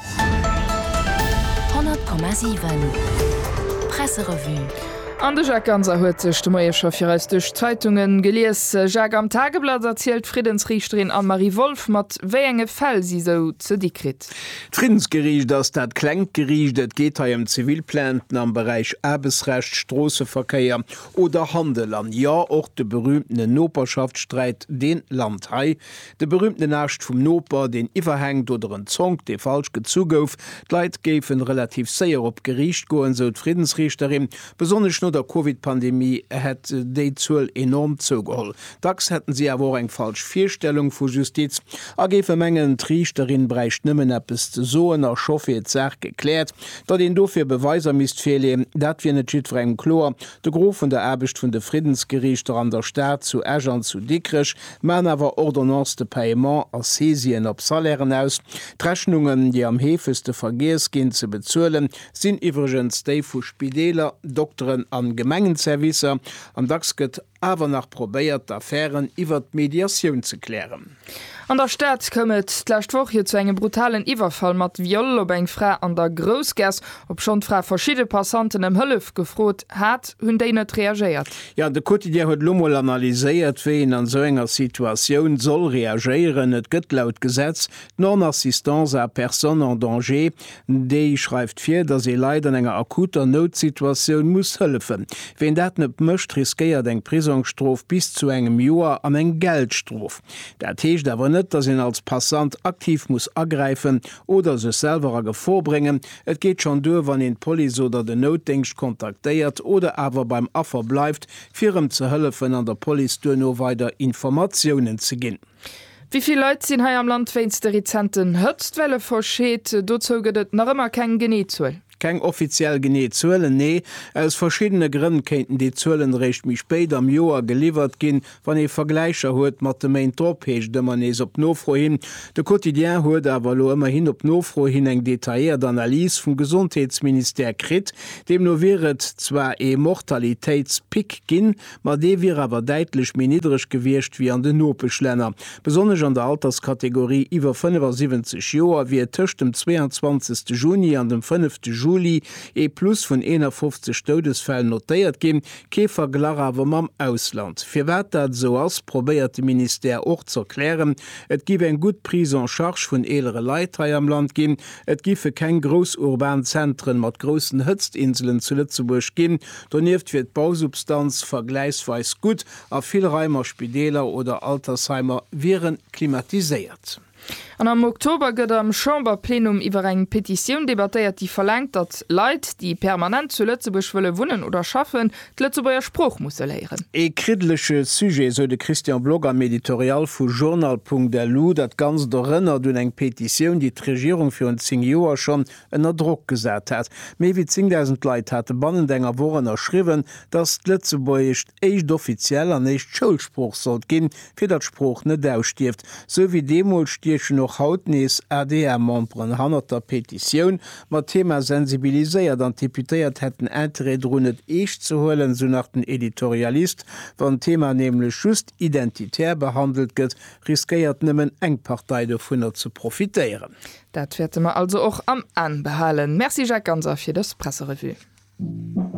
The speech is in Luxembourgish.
100,7 Presserevue. An de Jacques Ganser huet sech de Moie scho fir eis duerch d'Zeitunge gelies. Jacques, am Tageblatt erzielt d'Friddensriichterin Anne-Marie Wolff, mat wéi enge Fäll si sou ze di kritt. D'Friddensgeriicht ass dat klengt Geriicht. Et geet hei ëm zivil Plainten am Beräich Aarbechtsrecht, Stroosseverkéier oder Handel. An jo, och de berüümtene Noperschaftssträit, deen lant hei. De berühmten Ascht vum Noper, deen iwwerhänkt, oder en Zonk, dee falsch gezu gouf. D'Leit géifen relativ séier op d'Geriicht goen, sou d'Friddensriichterin. Besonnesch no der Covid-Pandemie hätt déi Zuel enorm zougeholl. Dacks hätten si awer och eng falsch Virstellung vu Justiz a géife mengen, d'Riichterin bräicht nëmmen eppes ze soen a scho wier d'Saach gekläert. Datt een dofir Beweiser misst virleeën, dat wier net jiddwerengem kloer. De Gros vun der Aarbecht vun de Friddensgeriichter an der Stad, zu Esch an zu Dikrech, maan awer Ordonnances de paiement a Saisien op Salairen aus. D'Rechnungen, déi am heefegste vergiess ginn ze bezuelen, sinn iwwregens déi vu Spideeler, Dokteren an Gemengenservicer. An dacks gëtt awer nach probéiert, d'Affären iwwert d'Mediatioun ze klären. An der Stad koum et d'lescht Woch jo zu engem brutalen Iwwerfall mat Viol op eng Fra an der Groussgass. Obschonn d'Fra verschidde Passanten ëm Hëllef gefrot hat, hunn déi net reagéiert. Jo, de Quotidien huet elo mol analyséiert, wéi een an esou enger Situatioun soll reagéieren. Et gëtt laut Gesetz d'Non-assistance à personne en danger. Déi schreift vir, datt ee Leit an enger akuter Noutsituatioun muss hëllefen. Ween dat net mécht, riskéiert eng Prisongsstrof bis zu engem Joer an eng Geldstrof. Dat heescht awer net, datt een als Passant aktiv muss agräifen oder sech selwer a Gefor bréngen. Et geet schonn duer, wann een d'Police oder den Noutdéngscht kontaktéiert oder awer beim Affer bleift, fir erëm ze hëllefen an der Police duerno weider Informatiounen ze ginn. Wéi vill Leit sinn hei am Land wéinst de rezenten Hëtztwelle verscheet? Dozou gëtt et nach ëmmer keng genee Zuel. Keng offiziell genee Zuelen, nee. Aus verschiddene Grënn kéinten déi Zuelen eréischt méi spéit am Joer geliwwert ginn, Wann ee Vergläicher huet mat de Méint drop, heescht et ëmmer nees op Nofro hin. De Quotidien huet awer elo ëmmerhin op Nofro hin eng detailléiert Analys vum Gesondheetsministère kritt. Deemno wier et zwar ee Mortalitéitspic ginn, ma dee wier awer däitlech méi niddreg gewiescht ewéi an den Nopeschlänner. Besonnesch an der Alterskategorie iwwer 75 Joer wier et tëscht dem 22 Juni an dem 5 Juli ee Plus vun 51 Doudesfäll notéiert ginn. Kee Verglach awer mam Ausland. Firwat dat esou ass, probéiert de Ministère och ze erklären. Et géif eng gutt Prise en charge vun eelere Leit hei am Land ginn. Et géife keng grouss urban Zentren mat groussen Hëtztinselen zu Lëtzebuerg ginn. Donieft wier d'Bausubstanz vergläichsweis gutt a vill Raim a Spideeler oder Altersheimer wiere klimatiséiert. An am Oktober gëtt am Chamberplenum iwwer eng Petitioun debattéiert, déi verlaangt, datt Leit, déi permanent zu Lëtzebuerg wëlle wunnen oder schaffen, d'Lëtzebuerger Sprooch musse léieren. Ee kriddelege Sujet, esou de Christian Block am Editorial vu Journal.lu. Dat Ganzt erënnert un eng Petitioun, déi d'Regierung virun 10 Joer schonn ënner Drock gesat hat. Méi wéi 10.000 Leit hate bannent enger Woch ënnerschriwwen, datt d'Lëtzebuergescht éischt offiziell an éischt Schoulsprooch sollt ginn, fir datt d'Sprooch net ausstierft, sou wéi deemools stiechen och haut nees ADR-Memberen hannert der Petitioun, mat Thema sensibiliséiert an d'Deputéiert hätten Interêt drun et eescht ze huelen, sou nach den Editorialist, wann d'Thema nämlech just identitär behandelt gëtt, riskéiert nëmmen eng Partei dovunner ze profitéieren. Dat wäerte mer also och am An behalen. Merci Jacques Ganser fir dës Presserevue.